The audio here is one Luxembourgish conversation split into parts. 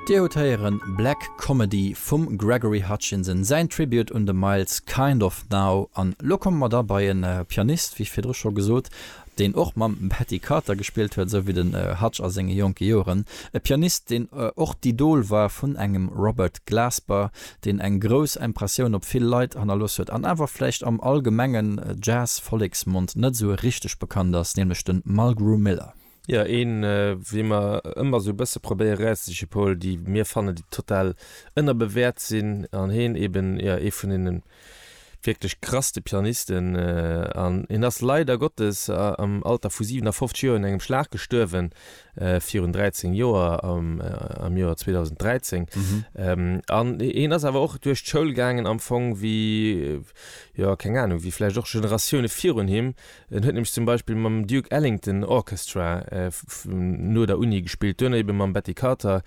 Dir hutt héieren Black Comedy vum Gregory Hutchinson, säin Tribute un de Miles, Kind of Now. An elo komme mer da bei e Pianist, wéi virdru scho gesot, deen och mam Patti Carter gespillt huet, esou wéi de Hutch a senge jonke Joren. E Pianist, deen och d'Idol war vun engem Robert Glasper, deen eng grouss Impressioun op vill Leit hannerlooss huet an awer vläicht am allgemenge Jazz-Volleksmond net esou richteg bekannt ass, nämlech de Mulgrew Miller. Jo, een wéi mer ëmmer sou e bësse probéiere rauszesiche Paul, déi mir fannen déi total ënnerbewäert sinn an heen eben jo ee vun deene wierklech krasste Pianisten an hien ass leider Gottes am Alter vu 57 Joer un engem Schlag gestuerwen virun 13 Joer am Joer 2013 an hien ass awer och duerch d'Schoul gaangen am Fong wéi jo keng Ahnung wéi vläicht och Generatioune virun him. En huet nämlech zum Beispill mam Duke Ellington Orchestra no der Uni gespillt, duerno ebe mam Betty Carter.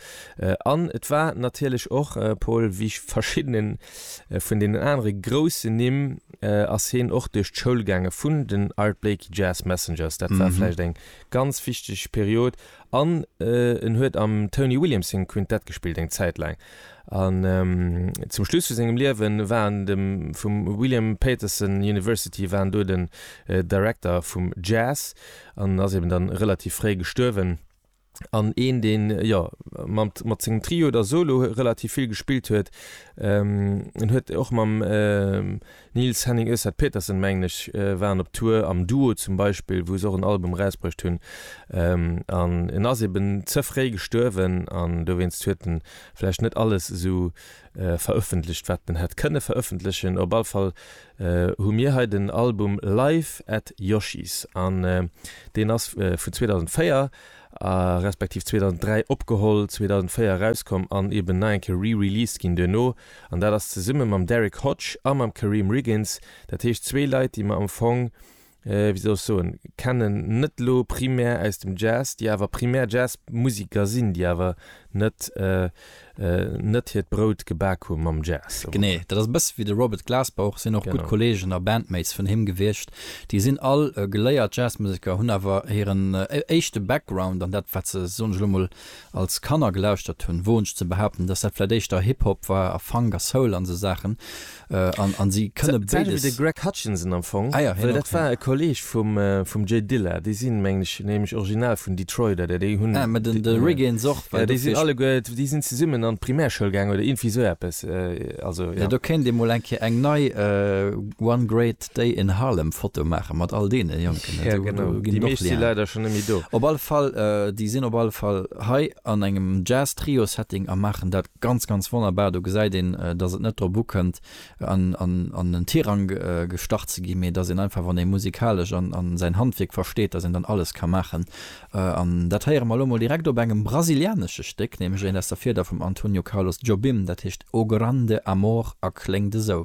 An et war natierlech och, Paul, wéi verschiddene vun deenen anere groussen Nimm ass hien och duerch d'Schoul gaange vun den Art Blakey Jazz Messengers. Dat war vläicht eng ganz wichteg Period. An en huet am Tony Williams sengem Quintett gespillt eng Zäit laang. An zum Schluss vu sengem Liewe war en dem vum William Peterson University war en do den Director vum Jazz an ass eben da relativ fréi gestuerwen. An een deen jo mat mat sengem Trio oder Solo relativ vill gespillt huet. En huet och mam Niels Henning Öseth Petersen mengen ech waren op Tour am Duo zum Beispill wou se och en Album rausbruecht hunn an en ass eben ze fréi gestuerwen an dowéinst huet en vläicht net alles esou verëffentlecht wat en hätt kënne verëffentlechen. Op all Fall hu mir hei den Album Live at Yoshis an deen ass vun 2004 respektiv 2003 opgeholl, 2004 erauskomm an eben nach eng Kéier re-released ginn duerno. An dat ass zesumme mam Derrick Hodge a mam Kareem Riggins, dat heescht zwee Leit, déi mer am Fong, wéi soll ech soen, kennen, net elo primär aus dem Jazz, déi awer primär Jazzmusiker sinn, déi awer net, net hiert Brout gebak hu mam Jazz. Genee, dat ass e bësse wéi de Robert Glasper, sinn och gutt Kolleegen a Bandmates vun him gewiescht. Déi sinn all geléiert Jazzmusiker, hunn awer hiren éischte Background an dat, wat se, soen ech elo mol, als Kanner gelauschtert hunn, woen ech ze behaupten, dass dat vläit éischter Hip Hop war a Funk a Soul an esou Saachen an an si kënne béides. D'selwecht wéi de Greg Hutchinson am Fong, Ah ja, hien well dat och, war e Kolleeg vum vum Jay Dilla. Déi sinn, mengen ech, nämlech original vun Detroit oder déi hunn, Ah, mä de de Rick eens och, well ja, déi sinn dofir. alleguer, déi sinn zesummen an d'Primärschoul gaangen oder iergendwéi esou eppes, also, Ja, jo. do kéint ee mol eng Kéier eng nei One Great Déi en Harlem Foto maachen mat all deene Jonken. Jo genau, déi meescht si leider schonn net méi do. Op alle Fall, déi sinn op alle Fall hei an engem Jazz Trio Setting a maachen dat ganz ganz wonnerbar. Do gesäit een dass et net drop ukënnt an en Tirang gestach ze ginn, mee dass een einfach wann ee musikalesch an säin Handwierk versteet, dass een dann alles ka maachen. An dat héiere mer elo mol direkt op engem brasilianesche Stéck, nämlech eent aus der Fieder vum Antonio Carlos Jobim, dat heescht O Grande Amor a kléngt esou.